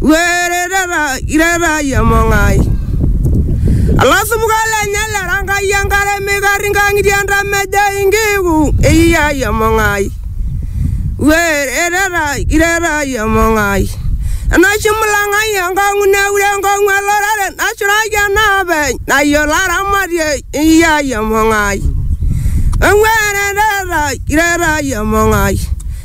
were tata ira taa iyie emong'ai olasupuka lenye lera Enkai enkare meikarri inkang'itie entamejoi inkiku eyia iyie emong'ai were tata ira taa iyie emong'ai enaisho imulang'ai enkong'u neure enkong'u elorere nashuraki enaapeny nayiolo aramatie eyia iyie emong'ai ewere tata ira taa iyie emong'ai.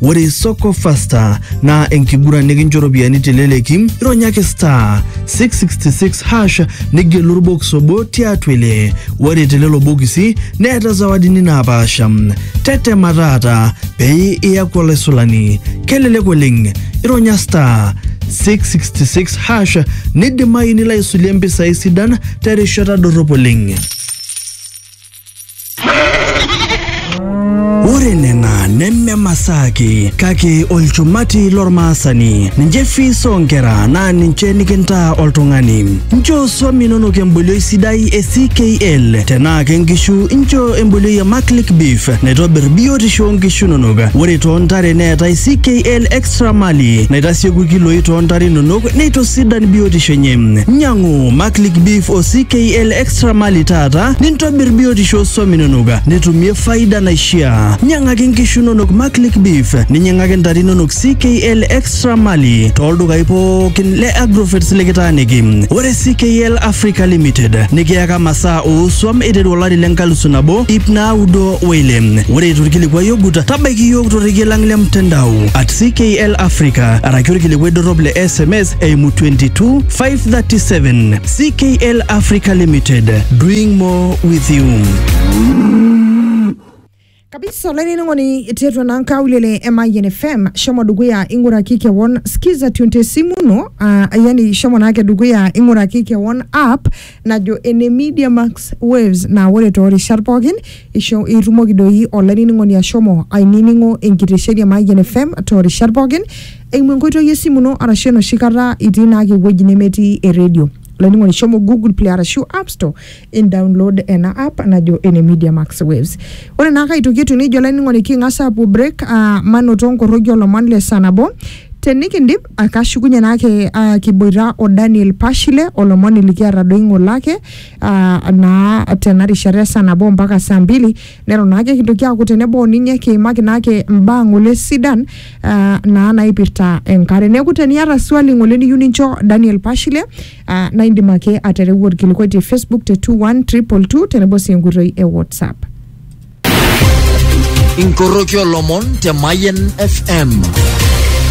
Ore Soko Fasta naa enkiguran nikincho ropiyiani teleleki, ironyaki star 666 hash nigelu orbokis obo tiatua ile. Ore telelo bokisi neeta zawadini naapaasha. Tetema taata pee iyaku olaisulani. Kelelek oleng, ironya star 666 hash nidimayu nilo aisulie mpisai sidan terishata dorrop oleng. Ore nena neme masaa ake kake olchumati lormaasani. Ninche fees oonkera naa ninche nikintaa oltung'ani. Nchoo swam inonok embolioi sidai e CKL. Tenaa ke nkishu nchoo embolioi e Maclick Beef naitobir biotisho oo nkishu inonok. Ore too ntare neetae CKL Extra Mali naitasieku ilkiloi too ntare inonok neitosidan biotisho enye. Nyang'u Maclick Beef o CKL Extra Sramali taata nintobir biotisho oo swam inonok nitumie faida naishiaa. Nyang'aki nkishu inonok Maclick Beef, ninyang'aki ntare inonok CKL Extra Mali tooldukai pookin le Agrovets likitaaniki. Ore CKL Africa Limited nikiyaka masaa oo swam eiteru olari le nkalusu nabo ip naudo o ile. Ore eitu ilkilikuai ogut, tabaiki iyiook torrekie lang le mtandao at CKL Africa araki olkilikuai dorrop le sms eimu 22537. CKL Africa Limited, doing more with you. kabisa olainining'oni tiatua naa nkaulele e Mayian FM shomo dukuya ing'uraki kewon skiza tune te simu ino uh, yani shomo naake dukuya ing'uraki kewon app najo ene Media Max Waves naa ore toorishat pookin isho itumoki doi olainining'oni ashomo ainining'o enkitesheni e Mayian FM toorishat pookin Eimu enkoitoi esimu ino arashu enoshi kata itii naake ewueji nemetii eredio. Olainining'oni shomo Google Play arashu App Store indownload ena app najo ene Media Max Waves. Ore naake aitoki etiu neija olainining'oni king'as aapuo break aa manoto nkorroki olomon le saa nabo. Tenikindip aa kashukunye naake aa kiboita o Daniel Pashile olomoni likiata doi ng'ole ake aa naa tena rishata e saa nabo mpaka saa mbili Neton ake kintoki aaku tenebo ninye kiimaki naake mbaa ng'ole sidan uh, naa naipirta enkare. Neeku teniata swali ng'ole niyieu nincho Daniel Pashile uh, naa indim ake atereu orkilikuai te Facebook te 21222 tenebo sii enkoitoi e WhatsApp. inkoroki olomon te Mayen FM